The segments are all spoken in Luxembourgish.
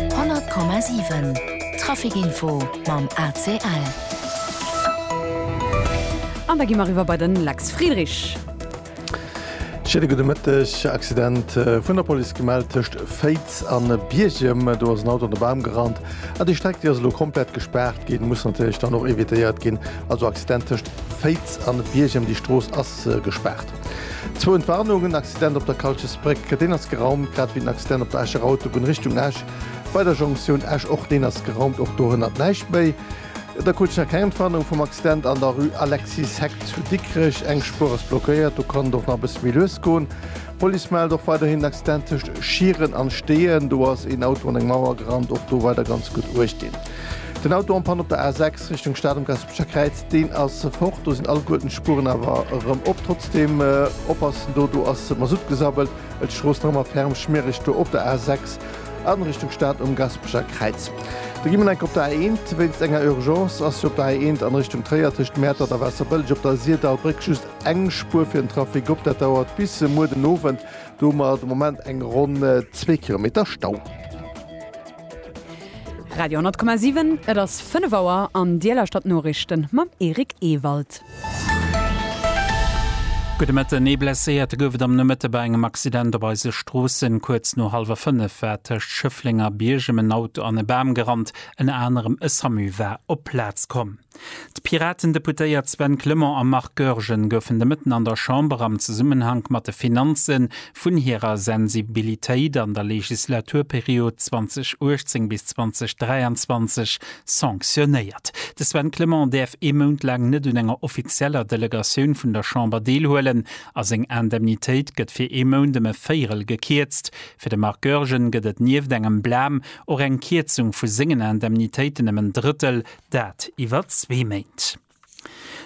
100,7 Trafic Info mam ACL. An da gi mer eriwwer bei de Lex Friedrich. Schéine gudde Mëtteg. Accident vun der Police gemellt tëscht Féiz a Biergem. Do ass en Auto an de Bam gerannt a déi Streck, déi ass elo komplett gespaart ginn. Muss natierlech dann och evitéiert ginn. Also Accident tëscht Féiz a Biergem, déi Strooss ass gespaart. Zwou Entwarnungen, Accident op der Kalches Bréck, deen ass geraumt, grad ewéi den Accident op der Escher Autobunn Richtung Esch bei der Jonktioun Esch, och deen ass geraumt, och dohënnert näischt méi. Da krut ech nach keng Entwarnung vum Accident an der Rue Alexis Heck zu Dikrech, eng Spuer ass blockéiert, do kann et och nach e bësse méi lues goen. D'Police mellt och weiderhin den Accident tëscht Schieren an Steeën, do ass een Auto an eng Mauer gerannt, och do weider ganz gutt uecht dinn. Den Auto en panne op der A6 Richtung Stad um Gare Kräiz, deen ass fort, do sinn alleguerten d'Spueren awer erëm op. Trotzdeem oppassen, do do ass Masutt gesabbelt. Et strooss nach ëmmer ferm schmiereg do op der A 6 an Richtung Stad um Gaspeger Kräiz. Da gi mer enk op der A 1, wéinst enger Urgence ass jo op der A 1 an Richtung Tréier tëscht Mäertert a Waasserbëlleg op der Sirdalbréck just eng Spuer fir den Trafic op. Dat dauert bis muer den Owend, do hu mer de Moment eng ronn zwee Kilometer Stau. Radio 10,7 Et ass 5 Auer an Dir lauschtert d'Noriichten mam Eric Ewald. Gudde Mëtten, Ee Blesséierte gouf et am Nomëtte bei engem Accident op eise Stroossen. Kuerz no hallwer 5 war tëscht Schëffleng a Biergem en Auto an e Bam gerannt. Ënner anerem e Samu war op d'Plaz komm. D'Piraten-Deputéiert Sven Clement a Marc Goergen goufen de Mëtten an der Chamber am Zesummenhank mat de Finanze vun hirer Sensibilitéit an der Legislaturperiod 2018 bis 2023 sanctionéiert. De Sven Clement däerf ee Mount laang net un enger offizieller Delegatioun vun der Chamber deelhuelen a seng Indemnitéit gëtt fir ee Mount ëm e Véierel gekierzt. Fir de Marc Goergen gëtt et nieft engem Blam och eng Kierzung vu sengen Indemnitéiten ëm en Drëttel, Dat iwwer zwee Méint.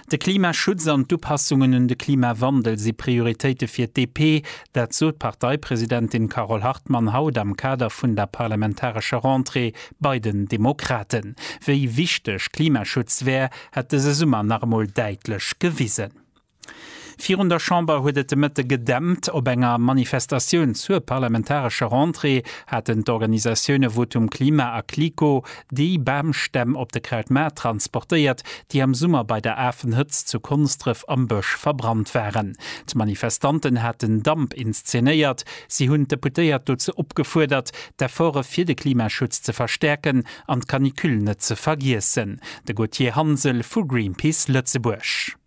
De Klimaschutz an d'Upassungen un de Klimawandel si Prioritéite fir d'DP. Dat sot d'Parteipresidentin Carole Hartmann haut am Kader vun der parlamentarescher Rentrée bei den Demokraten. Wéi wichteg Klimaschutz wär, hätt dëse Summer nach emol däitlech gewisen. Virun der Chamber huet et de Mëtte gedämpt. Op enger Manifestatioun zur parlamentarescher Rentrée haten d'Organisatioune Votum Klima a Clico déi Bamstämm op de Kraut Maart transportéiert, déi am Summer bei der Afenhëtzt zu Konsdref am Bësch verbrannt waren. D'Manifestanten haten Damp inszenéiert. Si hunn d'Deputéiert dozou opgefuerdert, d'Efforte fir de Klimaschutz ze verstäerken an d'Canicule net ze vergiessen. De Gauthier Hansel vu Greenpeace Lëtzebuerg.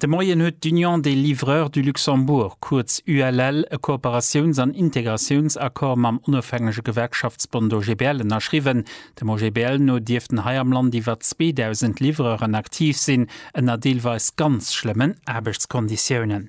De Moien huet d'Union des Livreurs du Luxembourg, kuerz ULL, e Kooperatiouns an Integratiounsaccord mam onofhängege Gewerkschaftsbond OGBL ënnerschriwwen. Dem OGBL no dierften hei am Land iwwer 2.000 Livreuren aktiv sinn, ënner deelweis ganz schlëmmen Aarbechtskonditiounen.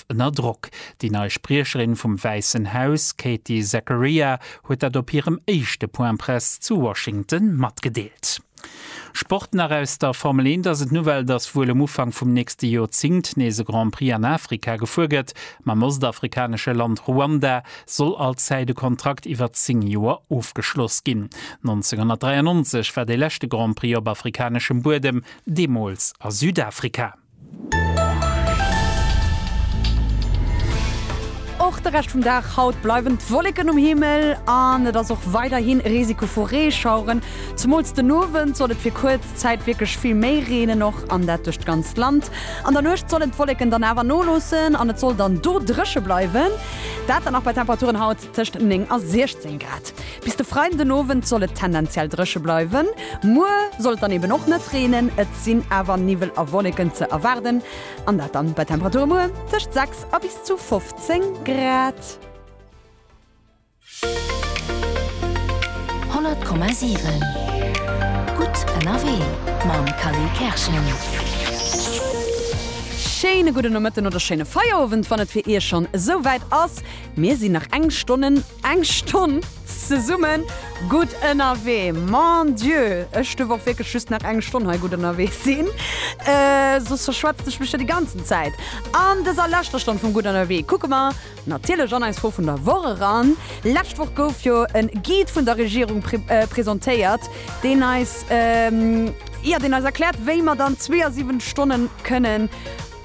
Protest ënner Drock. Déi nei Spriecherin vum Wäissen Haus, Katie Zachariah, huet dat op hirem éischte Point Presse zu Washington matgedeelt. Sport nach aus der Formel 1 ass et d'Nouvelle, dass wuel um Ufank vum nächste Joerzingt nees e Grand Prix an Afrika gefuer gëtt. Mam ostafrikanesche Land Ruanda soll allzäit e Kontrakt iwwer 10 Joer ofgeschloss ginn. 1993 war dee leschte Grand Prix op afrikaneschem Buedem, deemools a Südafrika. Och de Rescht vum Dag haut bleiwen d'Wolleken um Himmel an et ass och weiderhi Risiko vu Reeschaueren. Zemools den Owend soll et fir kuerz Zäit wierklech vill méi reenen, och an dat duerch d'ganzt Land. An der Nuecht sollen d'Wolleken dann awer noloossen an et soll dann do dréche bleiwen, dat dann nach bei Temperaturen haut. tëscht 9 a 16 Grad. Bis de Freiden den Owend soll et tendenziell dréche bleiwen. Muer soll et dann eben och net reenen, et sinn awer Niwwel a Wolleken ze erwaarden an dat dann bei Temperature muer tëscht 6 a bis zu 15 Grad. 100,7 Gutt ënnerwee mam Kally Kerschen. Schéine gudden Nomëtten oder schéine Feierowend, wann et fir Iech schonn esou wäit ass. Mir sinn nach eng Stonnen, eng Stonn zesummen gutt ënnerwee. Mon Dieu, ech duerf och wierklech just nach eng Stonn hei gutt ënnerwee sinn, soss verschwätzt ech mech jo déi ganzen Zäit. An dëser leschter Stonn vum Gutt ënnerwee kucke mer natierlech an eis Fro vun der Woch eran. Lescht Woch gouf jo e Guide vun der Regierung presentéiert, deen eis, jo, deen eis erkläert, wéi mer dann 72 Stonne kënnen,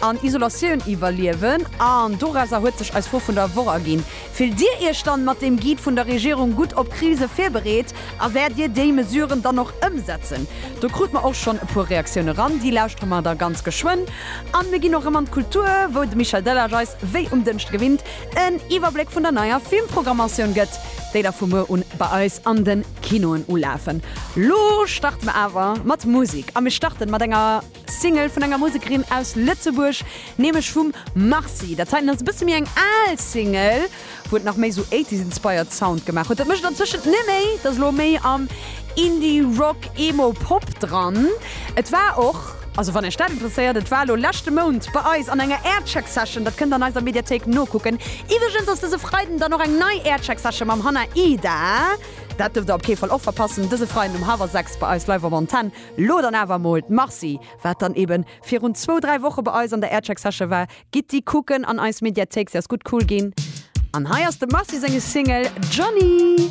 an Isolatioun iwwerliewen an dorauser huet sech eis Fro vun der Woch erginn. Fillt Dir Iech dann mat deem Guide vun der Regierung gutt op Krise virbereet a wäert Dir déi Mesuren dann och ëmsetzen? Do krut mer och schonn e puer Reaktioune ran, déi lauschtere mer da ganz geschwënn. An mir ginn och erëm an d'Kultur, wou de Michel Delage eis wéi um Dënschde gewinnt en Iwwerbléck vun der neier Filmprogrammatioun gëtt, déi da vu muer un bei eis an den Kinoen ulafen. Lo starte mer awer mat Musik a mir starten mat enger. Single vun enger Musekerin aus Lëtzebuerg, nämlech vum Marcy. Dat heiten ass e bësse méi eng al Single, wou et nach méi esou Eighties-inspired Sound gemaach huet. Dat mécht antëschent net méi, et ass elo méi am Indie-Rock-Emo-Pop dran. Et war och, also wann Iech dat interesséiert, et war elo leschte Mount bei eis an enger Aircheck-Session, dat kënnt an eiser Mediathéik nokucken. Iwwregens ass dëse Freiden dann och eng nei Aircheck-Session mam Hannah Ida, dat duerft der op kee Fall och verpassen, dëse Freiden um hawwer 6 bei eis live op Antenne. Lo dann awer mol d'Marci, wat dann eben virun zwou, dräi Woche bei eis an der Aircheck Session war, gitt déi kucken an eis Mediathéik, se ass gutt cool ginn. An hei ass dem Marci senge Single Johnny.